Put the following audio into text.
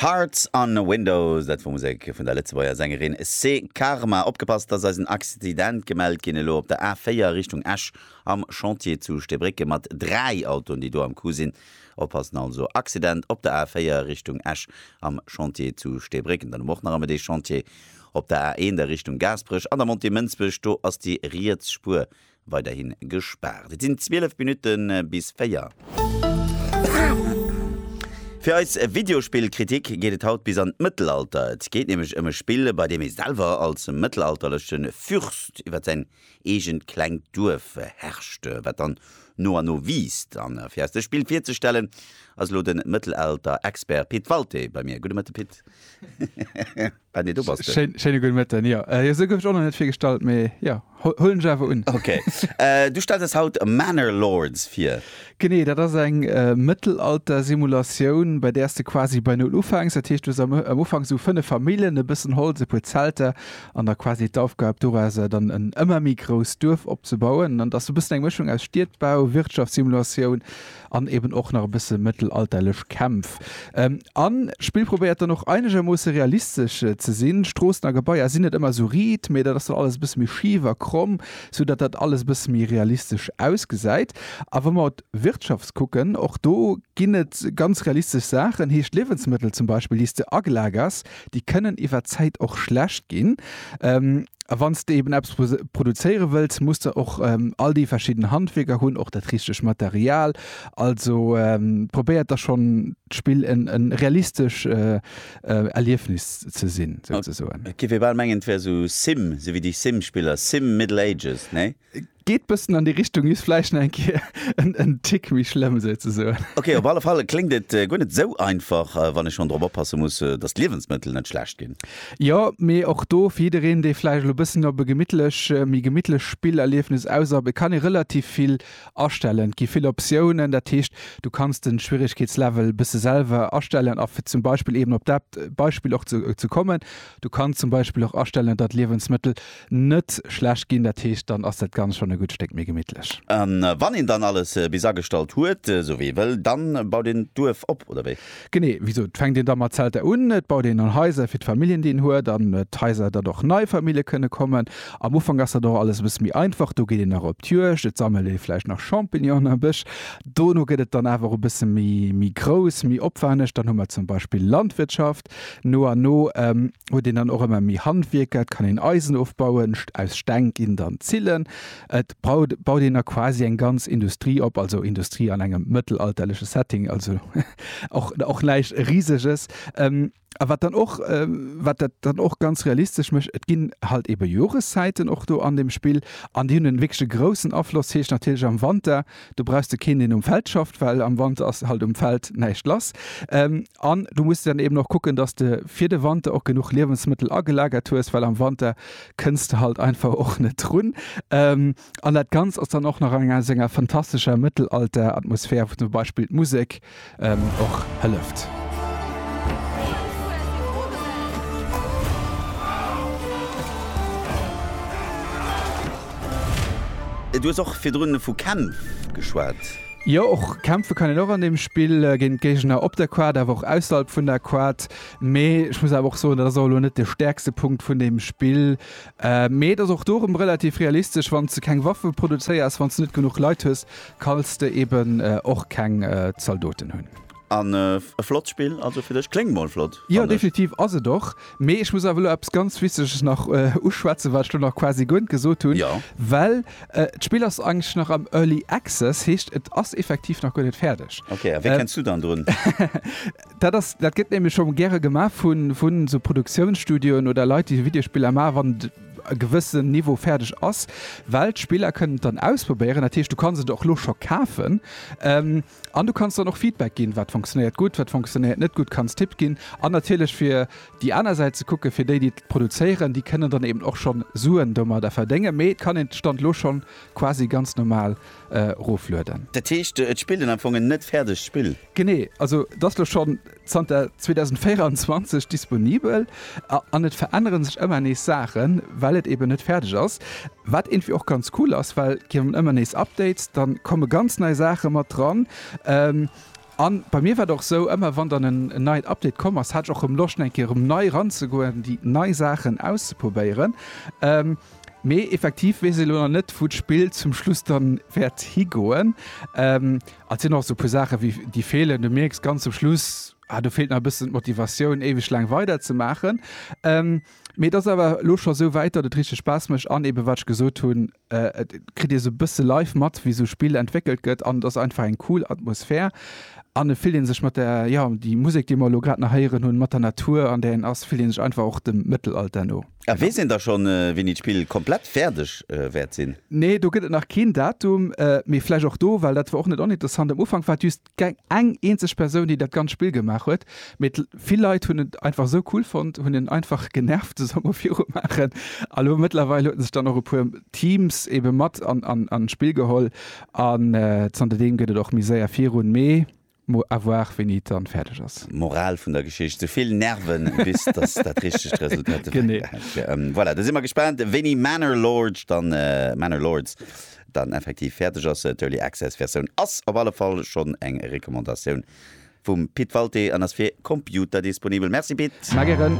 Hearts on a Window, dat wor Musek vun der Lëtzebuerger Sängerin Cé Karma. Opgepasst, dass eis en Accident gemellt ginn, elo op der A4 Richtung Esch am Chantier zu Steebrécken mat 3 Autoen déi do am Coup sinn. Oppassen also, Accident op der A4 Richtung Esch am Chantier zu Steebrécken. Dann hu mer och nach ëmmer dee Chantier op der A1 a Richtung Gaasperech an der Montée Mënsbech, do ass déi riets Spuer weiderhi gespaart. Et sinn 12 Minutte bis 4. Fir eis Videospill-Kritik geet et haut bis an d'Mëttelalter. Et geet nämlech ëm e Spill, bei deem ee selwer als mëttelalterleche Fürst iwwer säin eegent klengt Duerf herrscht, wat dann no an no wiisst. A fir eis dës Spill virzestellen, ass elo de Mëttelalter-Expert Pit Walté bei mir. Gudde Mëtte Pit. Ah nee, do bass de. Schéine gudde Mëtten, jo. Jo, esou gouf ech och nach net virgestallt, mee jo, huelen ech awer un. Ok. Du stells eis haut Manor Lords vir. Genee, dat ass eng Mëttelalter-Simulatioun, bei där s de quasi bei Null ufänks. Dat heescht, du hues am Ufank esou fënnef Familljen, e bëssen Holz, e puer Zelter an da quasi d'Aufgab dorauser dann en ëmmer méi grousst Duerf opzebauen. An dat ass esou e bëssen eng Mëschung aus Stiedbau, Wirtschaftssimulation, an eben och nach e bësse mëttelalterlech Kämpf an d'Spill probéiert dann och einegermoosse realistesch ze sinn. Stroossen a Gebaier sinn net ëmmer sou riit, mee dat ass dann alles e bësse méi schif a kromm, sou datt dat alles e bësse méi realistesch ausgesäit. A wa mer op d'Wirtschaft kucken, och do ginn et ganz realistesch Saachen, heescht Liewensmëttel zum Beispill, déi s de agelagerst, Déi kënnen iwwer d'Zäit och schlecht ginn. A wann s de eben eppes produzéiere wëlls, muss de och all déi verschidden Handwierker hunn, och dat richteg Material. Also probéiert da schonn d'Spill e realistesch Erliefnis ze sinn, souzesoen. Et géif ee bal mengen, et wär esou Sim, esou wéi déi Sim-Spiller, Sim Middle Ages, nee? Geet bëssen an déi Richtung, just vläicht nach eng Kéier en Tick méi schlëmm, souzesoen. Ok, op alle Fall kléngt et guer net esou einfach, wann ech schonn drop oppasse muss, dass d'Liewensmëttel net schlecht ginn. Jo, mee och do, fir jiddereen, dee vläicht elo bëssen op e gemittlech, méi gemittlech Spillerliefnis aus ass, e kann ee relativ vill astellen. Et gi vill Optiounen, dat heescht, du kanns de Schwieregkeetslevel bësse selwer astellen. A fir zum Beispill eeben op dat Beispill och ze kommen, du kanns zum Beispill och astellen, datt d'Liewensmëttel net schlecht ginn, dat heescht dann ass dat Ganzt schonn e gutt Stéck méi gemittlech. A wann een dann alles bis agestallt huet, esou wéi ee wëll, da baut een d'Duerf op, oder wéi? Genee wéi esou, et fänkt een da mat Zelter un, et baut een an Haiser fir d'Familljen, déi een huet, an d'Haiser, datt och nei Famillje kënne kommen. Am Ufank ass dat och alles e bësse méi einfach, do geet een nach op d'Juegd, et sammelt ee vläicht nach Champignonen am Bësch. Dono gëtt et dann awer e bësse méi grouss, méi opwenneg, dann hu mer zum Beispill Landwirtschaft. Schaft. No an no huet een dann och ëmmer méi Handwierker, et kann een Eisen ofbauen, aus Steng ginn dann Zillen, et baut een da quasi eng ganz Industrie op, also Industrie an engem mëttelalterleche Setting, also och näischt Riseges. A wat dann och, wat dat dann och ganz realistesch mécht, et ginn halt ebe Joreszäiten och do an deem Spill an déi hunn e wierklech e groussen Afloss, heescht natierlech am Wanter, Do brauchs de keen deen um Feld schafft, well am Wanter ass halt um Feld näischt lass. An du muss dann eben och kucken, datt de fir de Wanter och genuch Liewensmëttel agelagert hues, well am Wanter kënns de halt einfach och net drun. An dat Ganzt ass dann och nach an enger senger fantastescher Mëttelalter-Atmosphär, wou zum Beispill d'Musek och hëlleft. Du hues och virdrun vu Kämpf geschwat. Jo, och kämpfe kann een och an deem Spill, géint Géigner op der Quad, awer och ausserhalb vun der Quad. Mee ech muss awer och soen, dat ass och elo net de stäerkste Punkt vun deem Spill. Mee et ass och do rëm relativ realistesch, wann s de keng Waffe produzéiers, wann s de net genuch Leit hues, kalls de eben och keng Zaldoten hunn. An e flott Spill also fir dech. Kléngt mol flott, fannen ech. Jo, definitiv ass et och. Mee ech muss awer elo eppes ganz Wichteges nach uschwätzen, wat ech elo nach quasi guer net gesot hunn. Jo. Well d'Spill ass eigentlech nach am Early Access, heescht et ass effektiv nach guer net fäerdeg. Ok, a wéi kenns du dann drun? Dat ass, dat gëtt nämlech scho gäre gemaach vun, vun esou Produktiounsstudioen oder Leit, déi esou Videospiller maachen, wann e gewëssen Niveau fäerdeg ass, well d'Spiller kënnen et dann ausprobéieren. Dat heescht, du kanns et och elo scho kafen an du kanns dann och Feedback ginn, wat funktionéiert gutt, wat funktionéiert net gutt, kanns Tipp ginn. An natierlech fir déi aner Säit ze kucken, fir déi, déi et produzéieren, déi kënnen dann eben och schonn Suen domadder verdéngen. Mee et kann een d'Stand elo schonn quasi ganz normal eroflueden. Dat heescht, et spillt een am Fong en net fäerdegt Spill? Genee, also et ass lo schonn zanter 2024 disponibel an et verännere sech ëmmer nees Saachen, well et eben net fäerdeg ass. Wat iergendwéi och ganz cool ass, well et ginn ëmmer nees Updates, da komme ganz nei Saache mat dran. A bei mir war et och esou, ëmmer wann dann en neit Update komm ass, hat ech och erëm Loscht eng Kéier erëm nei eranzegoen, déi nei Saachen auszeprobéieren. Mee effektiv weess ee lo nach net, wou d'Spill zum Schluss da wäert higoen. Et sinn och esou e puer Saachen, wéi déi feelen. Du mierks ganz zum Schluss, ah, do feelt nach e bëssen d'Motivatioun, éiweg laang weider ze maachen. Mee et ass awer elo scho esou wäit, datt et richteg Spaass mécht. An eeben, wat ech gesot hunn, et kritt ee esou e bësse live mat, wéi esou e Spill entwéckelt gëtt. An et ass einfach eng cool Atmosphär. An et fillt ee sech mat der, jo, déi Musek, déi mer elo grad nach héieren hunn, mat der Natur, an där een ass, fillt ee sech einfach och dem Mëttelalter no. A weess een da schonn, wéini d'Spill komplett fäerdeg wäert sinn? Nee, do gëtt et nach keen Datum. Mee vläicht och do, well dat war och net oninteressant, am Ufank war et just eng eenzeg Persoun, déi dat ganzt Spill gemaach huet. Mee vill Leit hunn et einfach esou cool fonnt, hunn en einfach genervt de Summer viru maachen. A lo mëttlerweil hueten sech dann och e puer Teams eebe mat an d'Spill geholl. An zanterdeem gëtt et och méi séier virun. Mee Mo avoir wéini et dann fäerdeg ass. Moral vun der Geschicht, sou vill Nerven bis dass dat richtegt Resultat ewechgehäit gëtt. Voilà, da si mer gespaant wéini Manor Lords dann Manor Lords dann effektiv fäerdeg ass. D'Early Access Versioun ass op alle Fall schonn eng Recommandatioun vum Pit Walté an ass fir Computer disponibel. Merci Pit. Mä gären.